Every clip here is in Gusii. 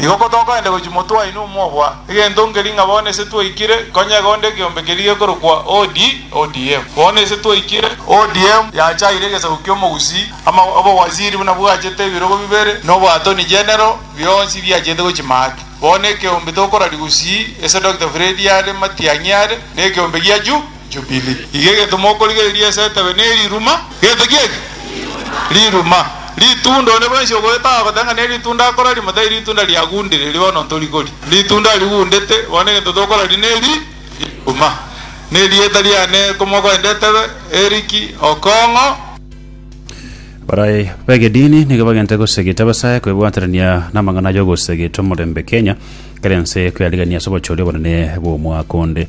Igo kotokoenda gochia motwe waino omobua, egento nkeri ng'a bono ise twaikire, konya egonda ekeombe keria gekorokwa OD, ODM. Bono ise twaikire. ODM yachaire egesaku ki'omogusii, ama obowaziri buna bwachete ebirogo bibere, na oboatoni genero, bionsi biachete gochia maate. Bono ekeombe tokorari gusii, ese Dokita Fredi are, matiang'i are, na ekeombe gia Ju. Jubili. Iga egento mokorigereria ase etebe neriruma. Gento ki eke? Riruma. Ritunda, onde bwensi ogoeta agoteba ng'a neritunda akora rimo, tari ritunda riagundire, erio bono ntorikori. Ritunda rigundete, bono egento tokoraria neri, riruma. Nerieta riane komogoenda etebe, Eriki Okong'o. Barai begedini nigo bagente gosegeta abasae kwebwaterania namang'ana ayogosegeta omorembe Kenya, kera ense kweyarigania ase obochori obonene bw'omwaka onde.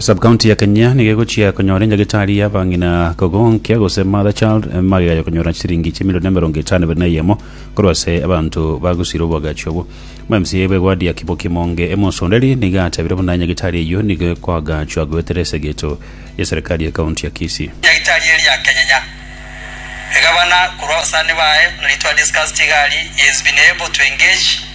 Sub county ya Kenya nigo egochia konyora enyagetari ya abang'ina kogonkia gose mother child eh, magega ya konyora chisiringi chimilioni emerongo etano biri na eyemo korwa ase abanto bagosira obwagachi obwo. Omwemsiya bwa egwadi ya Kibo Kimonge Emosonderi nigo atebirie buna enyagetari eyio nigo ekoagachwa goetera esegeto ya serikali ya county ya Kisii. Enyagetari eria ya Kenyenya egabana korwa abasani baye na ritwa discussed igari he has been able to engage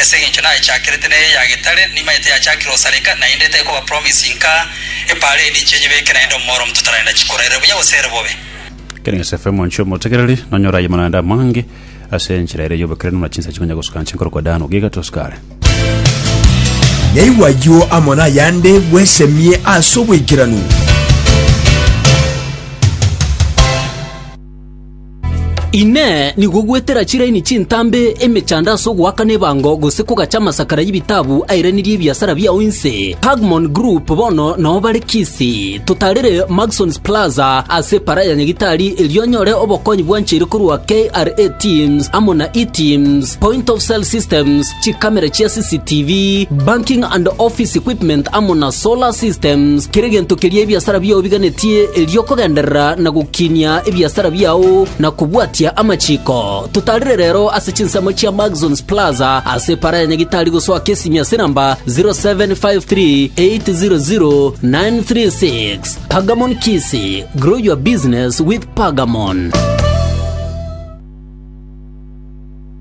Ase engencho nayechakerete neye ya getare, nimaete yachakire gosareka, naende tekoba promise inka epaara eende inche nyebeke naende omoro omonto tararenda chikoraerera buya gose ere bobe. Ekero Yosefu omonchie omotegereri, nonyora ayemo naende amange ase enchera ere y'obokeranu na chinsa chikonya gosuka nche nkorokwa Dano, giga tosuka are. Yaigwa ayio amo nayande bwesemie ase obwaikeranu. Inee! Nigo gwetera chiraini chintambe emechando ase ogoakana ebango gose kogacha amasakara y'ebitabu airanerie ebiasara biao inse? Pagmon Group bono nao bare Kisi, totaarere Maxons Plaza ase Epara ya Nyagitari erio onyore obokonyi bwancheire korwa KRA Teams amo na E-Teams, Point of Sale Systems, chikamera chia CCTV, banking and office equipment amo na solar systems, kera egento keria ebiasara biao biganetie erio okogenderera na gokinia ebiasara biao na kobwatia amachiko. Totarire rero ase chinsemo chia Maxons Plaza ase epara ya Nyagitari gosoa Kesimi ase namba 0753800936. Pagamon Kisi, grow your business with Pagamon.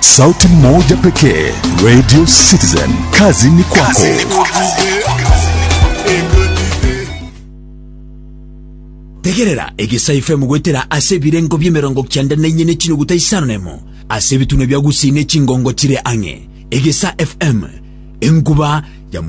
Sauti moja pekee, Radio Citizen. Kazi ni kwako. tegerera egesayi fm goetera ase ebirengo bi'emerongo kianda na inye ne chinuguta isano nemo ase ebitunwa bia gusii ne chingongo chire ang'e egesa fm enkuba ya